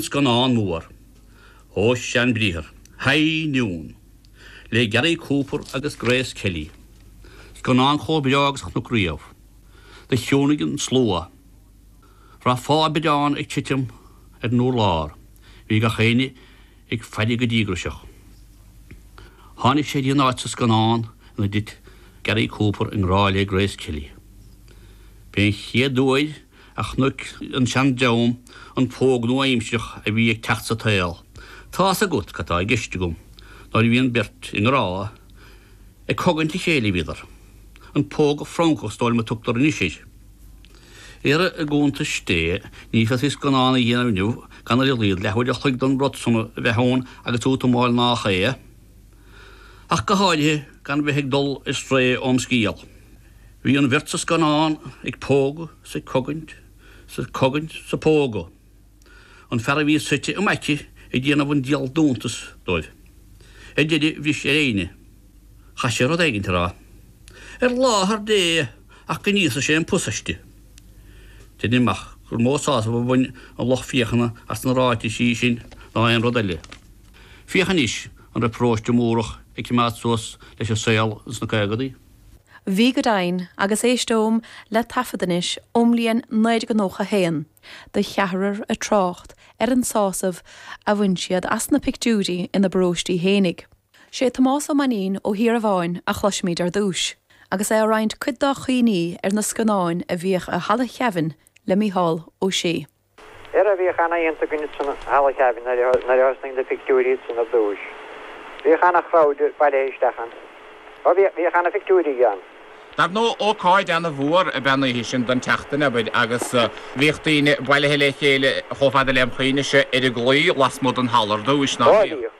Scannán mór ó sea ambriathar, High Noon, le Gary Cooper agus Grace Kelly. Scannán chomh breá agus a chonac riamh. Do chiúnaigh an slua. D'aireofá biorán ag titim ar an urlár. Bhí gach éinne ag faire go díograiseach. Tháinig sé dtí an áit sa scannán ina dtit Gary Cooper i ngrá le Grace Kelly. B'é an chéad uair a chonaic an seandream an póg nua aimsearach a bhí ag teacht sa tsaol. Tá's agat cad tá i gceist agam. Nuair a bhíonn beirt i ngrá, ag cogaint a chéile a bhíodar. An póg Francach is dóigh liom a tugtar anois air. Ara i gcuntais Dé ní féadfaí scannán a dhéanamh inniu gan ar a laghad leathuair a chloig den rud san a bheith ann agus útamáil nách é ach go háirithe gan bheith ag dul ar strae óm scéal. Bhí an bheirt sa scannán ag pógadh 's ag cogaint 's ag cogaint 's ag pógadh an fear a bhí suite im aice ag déanamh an dial d'iontas dóibh. Ar deireadh bhris ar a fhoighne. Chaith sé rud éigin a rá. Ar láthair Dé ach go n-íosfaidh sé an pus aisti. Deinim amach gur mó sásamh a bhain an lucht féachana as na ráitisí sin ná aon rud eile. Féach anois an raibh paróiste Múrach ag coimeád suas leis an saol ins na caogaidí. Bhí go deimhin, agus éisteoim le taifead anois ón mbliain 1991, de cheathrar ag trácht ar an sásamh a bhain siad as na pictiúirí ina bparóistí fhéinig. Sé Tomás Ó Mainnín ó Thíorabháin a chloisimid ar dtús, agus é ag roinnt cuid dá chuimhní ar na scannáin a bhíodh i Halla Sheamhain le Micheál Ó Sé. Ara bhíodh ana-oícheanta againn ansan i Halla theimhin nuair a thosnaigh na pictiúirí ansan ar dtúis. Bhíodh ana-chrowd bailithe isteach ann. Ó, bhíodh ana-phictiúirí ann. Dar ndóigh, ócáid ana-mhór ab ea an oíche sin den tseachtain abair agus bhíodh daoine bailithe le chéile chomh fada lem chuimhne-se ar an gclaí lasmuigh den halla ar dtúis, nach mbíodh?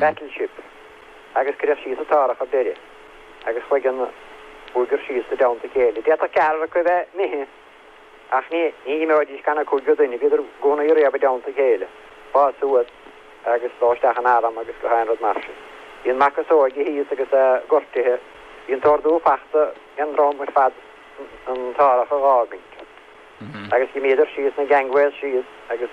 battleship, agus cuireadh síos an t-árthach abair agus chuaigh an cúigear síos i dteannta a chéile. D'fhéadfadh ceathrar acu a bheith imithe ach ní imeoidís gan an cúigiú duine, bhíodar i gcónaí riamh i dteannta a chéile, ag fás suas agus dul isteach in arm agus gach aon rud mar sin. Bhí an mac is óige thíos agus é gortaithe, bhí an t-ordú fachta ag an dream ar fad an t-árthach a dh'fhágaint agus d'imíodar síos na gangways síos agus